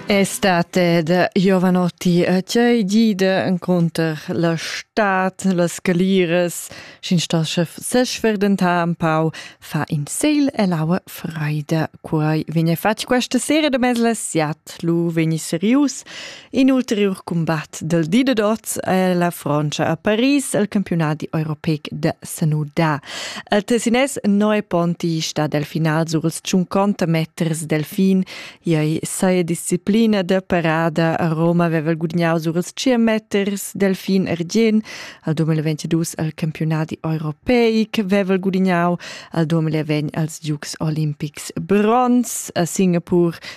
È state de Giovanotti a cei gide inconter la stat, las calires, sin stas chef sesverdentar un pau, fa in segl e l'aua freida. Quai vegna fatg questa sera de mezla siat, lu vegni serius, In ulteriur cumbat dal di da dots è la Frantscha a Paris al campiunat europeic da Sanuda. Il Tessinès Noe Ponti sta dal final sur els 50 meters delfin. Iai saia disciplina da parada a Roma aveva gudagnau sur els 100 meters delfin argien. Al 2022 al campiunat europeic aveva gudagnau. Al 2020 als Dukes Olimpics bronz. A Singapur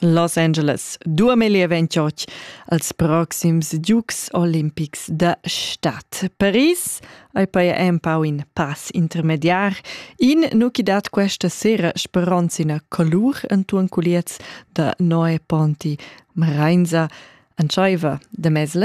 Los Angeles dua meglier ventg als proxims Dukes olimpics da stad. Paris ei poi empau in pass intermediar. In nu chi dat questa sera speronzina colur entuon culiez da Noe Ponti Mreinza entscheiva de mezle